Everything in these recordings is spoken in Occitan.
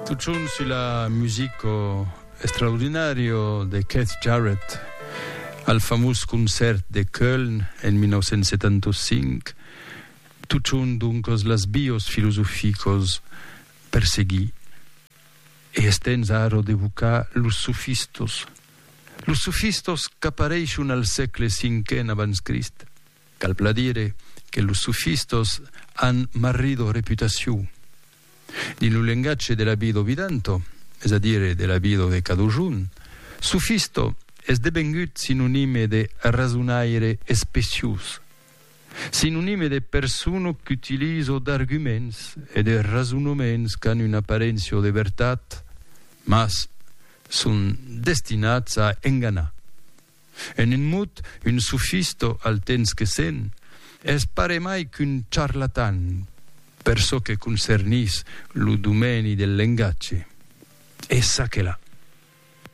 Tutjorn sus la music o estraordinària de Keith Jarrett al famós concèrt de Köln en 1975, tutjorn doncas las bios filosoficos per seguir e es temps ara d'evocar los sofistos, los sofistos qu'apareishon al sègle cinquen abans Crist. Cal plan dire que los sofistas an marrido reputacion. Dins lo lengatge de la vida vidanta, es a dire de la vida de cadojun, sofista es devengut sinonime de rasonaire especiós, sinonime de persona qu'utiliza d'arguments e de rasonaments qu'an una aparéncia de vertat, mas son destinats a enganar. En un mot, un sofisto al temps que se'n es paremai qu'un charlatan per çò que concernís lo domèni del lengatge. E ça que la.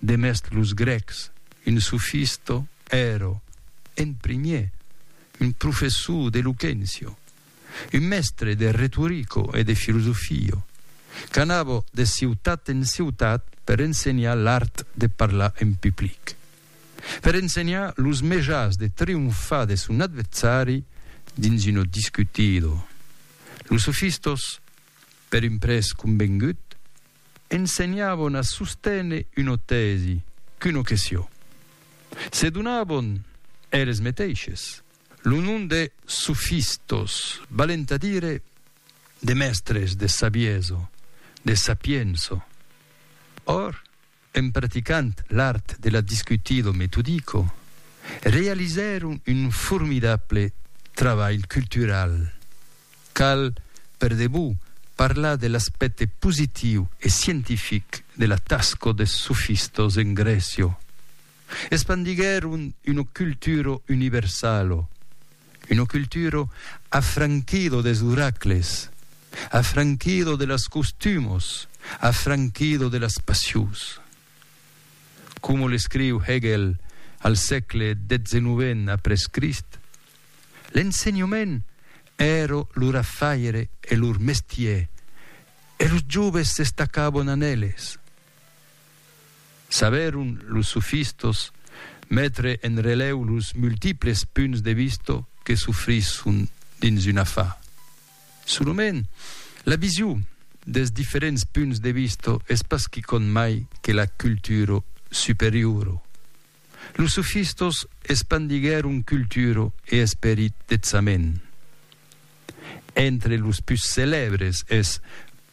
Demest los grècs, un sofisto èro, en primièr, un professor d'eloquéncia. Un mèstre de retorico e de filosofio, qu'anava de ciutat en ciutat per ensenhar l'art de parlar en public, per ensenhar los mejans de trionfar de son adversari dins una discutida. Los sofistas, per un prètz convengut, ensenhavan a sosténer una tèsi, qu'una question. Se donavan eles meteishes. Lo nom de sofistos valent a dire de mèstres de saviesa, de sapiença. Or, en praticant l'art de la discutido metodico, realizèron un formidable trabalh cultural. Cal, per debut, parlar de l'aspècte positiu e scientific de la tasca des sofistos en Grècia. Espandiguèron una cultura universala, una cultura afranquida des oracles, afranquida de las costumas, afranquida de las passions. Coma l'escriu Hegel al sègle xix après Crist, l'ensenhament èra lor afaire e lor mestièr, e los joves s'estacavan en eles. Sabèron los sofistos metre en relèu los multiples punts de vista que s'ofrisson dins un afar. Solament, la vision dels diferents punts de vista es pas quicòm mai que la cultura superiora. Los sofistos espandiguèron cultura e esperit detzament. Entre los pus celèbres es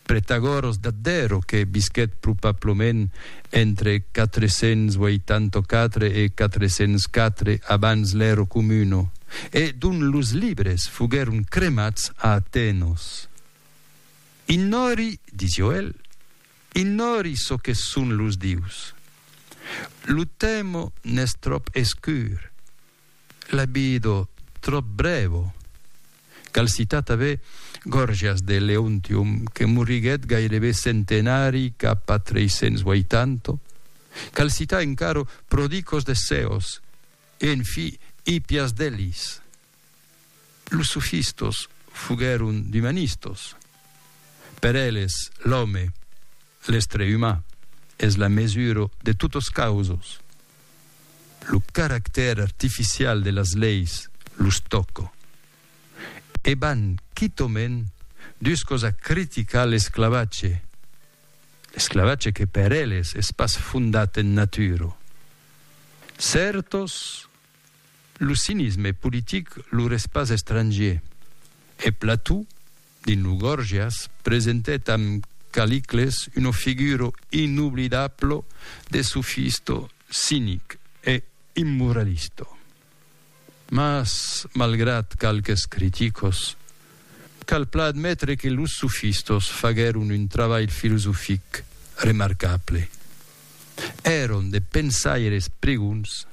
Pretagoros d'Addero que visquèt probablament entre 484 e 404 abans l'Ero Comuno e dont los libres foguèron cremats a Atenos. Ignòri, disió el, ignòri çò que son los dius. Lo temo n'es tròp escur. La vido tròp brèvo. Cal citar tanben Gòrgias de Leontium que moriguèt gairebe centenari cap a 380. Cal citar encara Prodicos de Ceos e en fi Hippias d'Elis. Los sofistos foguèron d'umanistos. Per eles, l'òme, l'estre umà, es la mesura de totas causas. Lo caractèr artificial de las leis los tòca. E van quitament duscos a criticar l'esclavatge, l'esclavatge que per eles es pas fondat en natura. Cèrtos Lo cinisme politic lor es pas estrangier, e Plató, dins lo Gorgias, presentèt amb Caliclès una figura inoblidabla de sofista cinic e immoralista. Mas, malgrat qualques criticas, cal plan admetre que los sofistas faguèron un trabalh filosofic remarcable. Èron de pensaires pregons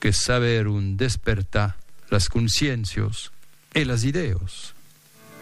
que sabèron despertar las consciéncios e las idèos.